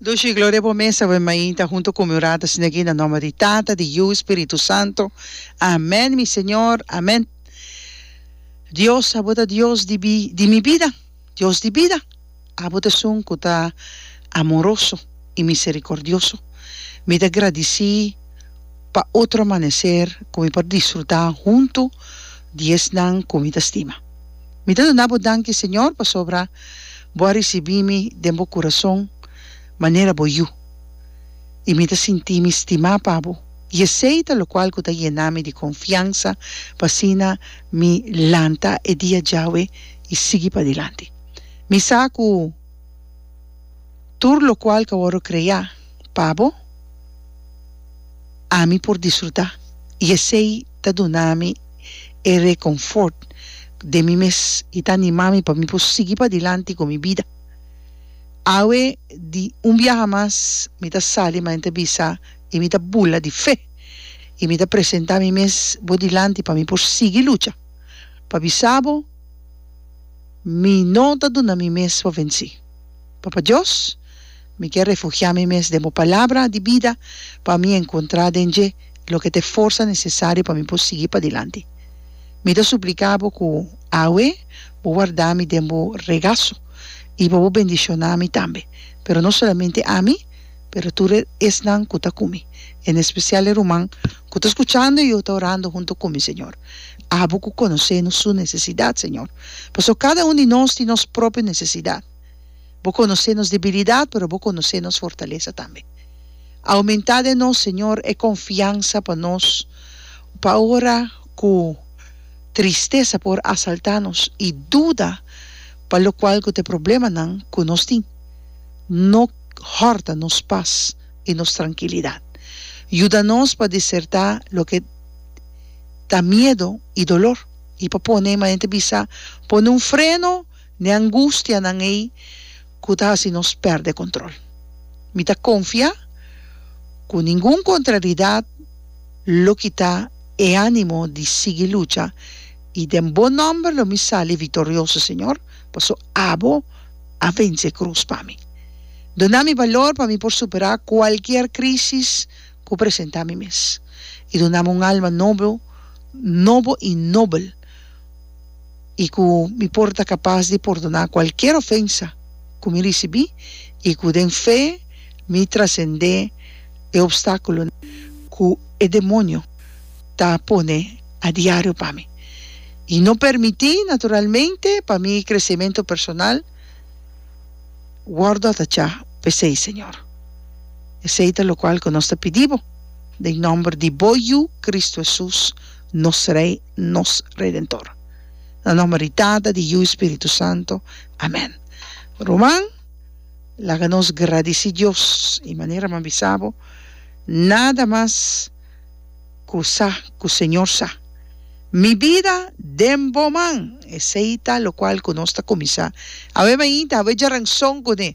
Dushi gloria bo mesa ven mainta hunto cu mi orata sina ki na nomber di tata di yu spiritu santo amen mi señor amen dios abo ta dios di bi di mi bida dios di bida abo ta esun cu ta amoroso y misericordioso mi ta gradici pa otro amanecer cu mi por disfruta hunto di esnan cu mi ta stima. Mi ta duna bo danki, Señor, pasobra bo a risibí mi den bo kurason manera bo yu, i mi ta sinti mi stimá pa bo, i esei ta lokual ku ta yená mi di konfiansa, pa asina mi lanta e dia djawe i sigui padilanti. Mi sa ku tur lokual ku a wòrdu kreá pa bo, ami por disfrutá, i esei. ta duna mi e reconfort den mi mes y ta anima mi pa mi por sigui padilanti cu mi bida. Awe di un biaha mas mi ta sali ma en ta bisa y mi ta bula di fe y mi ta presenta mi mes bo dilanti pa mi por sigui lucha. Pa bisa bo mi no ta duna mi mes pa venci. Papa Dios. Mi ke refugiá mi mes den bo palabra di bida pa mi enkontrá den dje loke ta e forsa nesesario pa mi por sigui padilanti. Mi ta supliká bo ku awe bo wardá mi den bo regaso i pa bo bendishoná mi tambe, pero no solamente ami, pero tur e esnan ku ta ku mi, en espesial e ruman ku ta skuchando i yo ta orando huntu ku mi, Señor. Abo ku konosé nos su nesesidat, Señor, pasobra kada un di nos tin nos propio nesesidat. Bo conoce nos debilidad, pero Bo conoce nos fortaleza tambe. Aumenta den nos, Señor, e confiansa pa nos pa ora cu tristeza por asalta nos y duda pa locual cu ta e problemanan cu nos tin. No horta nos paz y nos tranquilidad. Yuda nos pa deserta loke ta miedo y dolor y pa pone, manera ta bisa, pone un freno. n'e angustianan ei ku ta hasi nos pèrdè kontrol. Mi ta konfiá ku ningun kontraridat lo kita e ánimo di sigui lucha i den Bo nòmber lo mi sali viktorioso, Señor, pasó Abo a vense e krus pa mi. Duna mi balor pa mi por superá kualkier krísis ku presentá mi mes i dunami un alma nobo, nobo i nobel. i ku mi por ta kapas di pordoná kualkier ofensa ku mi risibí i ku den fe mi trasendé e opstákulo ku e demonio ta pone adiario pa mi i no permití naturalmente pa mi kresementu personal wòrdu atachá p'esei, Señor. Esei ta lokual ku nos ta pidí Bo den nòmber di Bo Yu, Kristu Hesus, nos Rei. nos Redentor. Na nomber di Tata, di Yu i Spiritu Santo. Amen. Ruman, laga nos gradisí Dios i manera man bisa bo, nada mas ku sa ku Señor sa, Mi bida den bo man! Esei ta lokual ku nos ta kuminsá awe mainta, awe djaranson kuné.